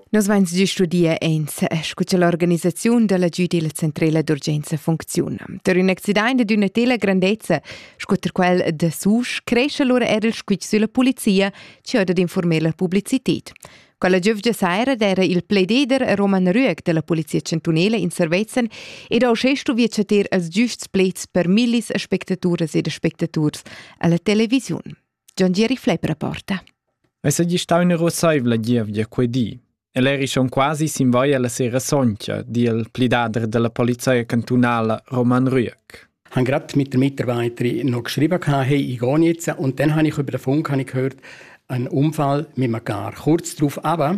Nus vains già studia ins scu cha l'organisaziun da l'agüd illa centrela d'urgenza funcziuna. Per ün accidaint ed üna tela grandezza sco ter quel da Susch cresce lura eir il squitsch sülla pulizia chi ho dad informer la publicited. Quella giövgia saira d'eira il plededer Roman Rüeg da la Polizia Chantunela in Servezzan ed ho uschè stuvi chatter als giüsts pleds per millis aspectaturas ed aspectaturs a la televisiun. John Gieri Flepp rapporta. Essa gli stau una rosaivla gievgia quei di. El eri schon quasi sin vai alla sera soncia, di il plidadr della polizia cantunala Roman Rüeck. Han gerade mit den Mitarbeitern noch geschrieben, hey, ich gehe jetzt. Und dann habe ich über den Funk habe ich gehört, einen Unfall mit einem Car. Kurz darauf aber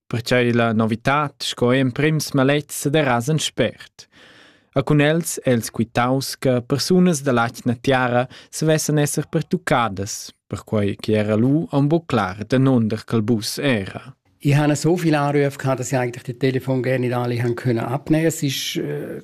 pertgei la novitad sco emprims malets sederas en spert. A cun els els quitaus che persunas dall'atgna tiara savessan esser pertuccadas, perquei che era lu un bu clar danunder quel bus era. Ich habe so viel Anrufe gehabt, dass ich eigentlich den Telefon gerne nicht alle haben können abnehmen. Es ist äh,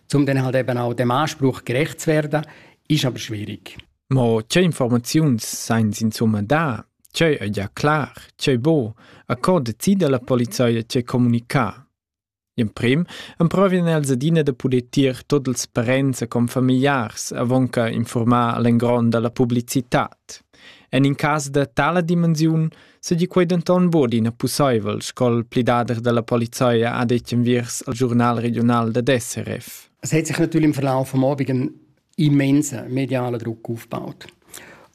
um dann halt eben auch dem Anspruch gerecht zu werden, ist aber schwierig. Ma che Informazions seien insomma da? C'è è già klar, c'è bo, a cor decide la polizia ce comunicare. In prim emprovien els adina da poder tier tot els parents e confamiliars avonca informar l'engron dalla publicitat. En in cas da tala dimensiun seigi quei denton buc ina pusseivel, sco il plidader dalla polizia ha detg enviers il giurnal regional dad SRF. Es hat sich natürlich im Verlauf am Abend einen immensen medialen Druck aufgebaut.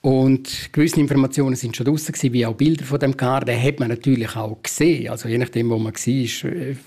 Und gewisse Informationen sind schon draußen gewesen, wie auch Bilder von dem Car. Den hat man natürlich auch gesehen. Also je nachdem, wo man war,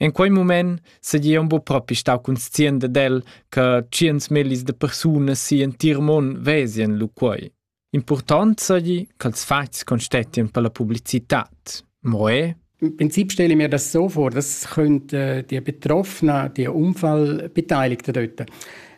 In quei mument seigi aunc buc propi stau conscient dad el che tschiens mellis da persunas sigl entir mund vesien lu quei. Impurtont seigi ch'ils fatgs constetien per la publicitad. Mo è? Im Prinzip stelle ich mir das so vor, das können äh, die Betroffenen, die Unfallbeteiligten dort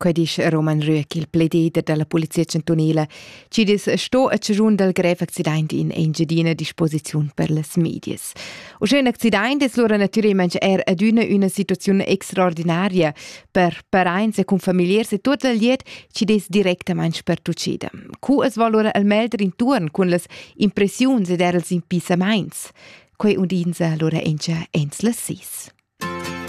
Quei disch Roman Rüeck, il pledider dalla polizia chantunila, chi dis sto a ciun dal grev accident in Engiadina disposiziun per las medias. Uschè un accident es lura natüralment er adüna üna situaziun extraordinaria per paraints e cun familiars e tot il liet chi des directament pertuccida. Cu es val lura al melder intuorn cun las impressiuns ed er els impissamaints? Quei undinsa lura encha ins las sis.